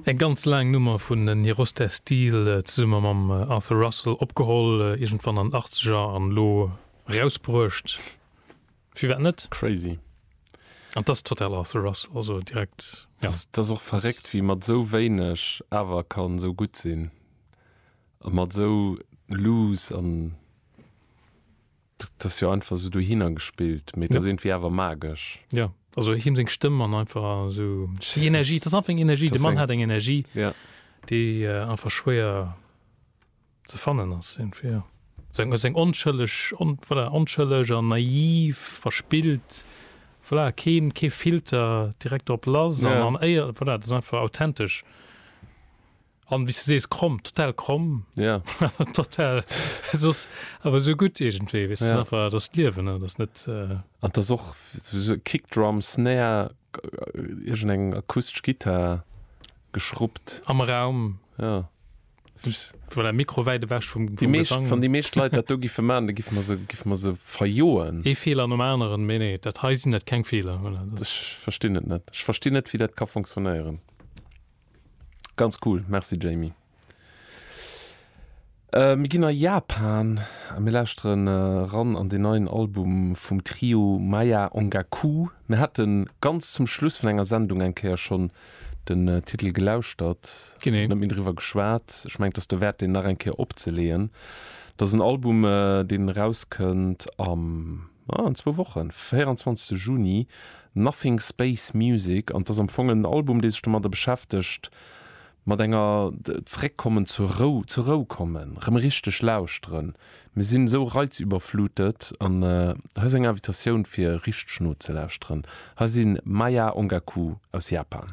Eng ganz laang Nummer vun Nirosteh Steal zesumme mam Arthur Russell, opgeholl iergendwann an den Achtzeger an elo erausbruecht, firwat net? Crazy. An et ass total Arthur Russell, also direkt, jo. Et ass och verréckt, wéi mat esou wéineg awer kann esou gutt sinn a mat esou loose an. Dat ass jo einfach sou dohinner gespillt, mee et ass iergendwéi awer magesch. Jo, also him seng Stëmm an einfach sou déi Energie, et ass einfach eng Energie, de Mann hat eng Energie, déi einfach schwéier ze fannen ass iergendwéi, jo. Seng, seng onschëlleg, voilà, onschëlleg an naiv, verspillt, voilà, keen, kee Filter, direkt drop lass an, an éier, voilà, et ass einfach authentesch. An wéis de sees kromm, total kromm. Ja. total soss awer sou gutt iergendwéi, weess ja. einfach dat d'Liewen an dat net. Äh an dat och so Kickdrum, Snare, iergend eng akustesch Gittar geschruppt. Am Raum. Ja. Well der Mikro wäit ewech vum Di meescht wann déi meescht Leit dat do giffe man, da giff mer se giff mer se verjoen. Ee Feeler nom aneren, mee nee, dat hei sinn dat keng Feeler. Ech verstinn et net. Ech verstinn net, wéi dat ka funktionéieren. Ganz cool, merci Jamie. Mir ginn a Japan a mir lauschteren eran an deen neien Album vum Trio Maya Ongaku. Mir hate ganz zum Schluss vun enger Sendung eng Kéier schonn den Titel gelauschtert, genee net méi driwwer geschwat. Ech mengen, et ass derwäert, deen nach eng Kéier opzeleeën. Et ass en Album, deen erauskënnt am. Ah, an zwou Wochen, 24 Juni, Nothing Space Music. An 't ass am Fong en Album, dee sech domadder beschäftegt, mat enger, zeréckkommen, zur Rou, zur Rou kommen, rëm richteg lauschteren. Mir sinn esou reizüberflutet. An hei ass eng Invitatioun, fir richteg nozelauschteren. Hei si Maya Ongaku aus Japan.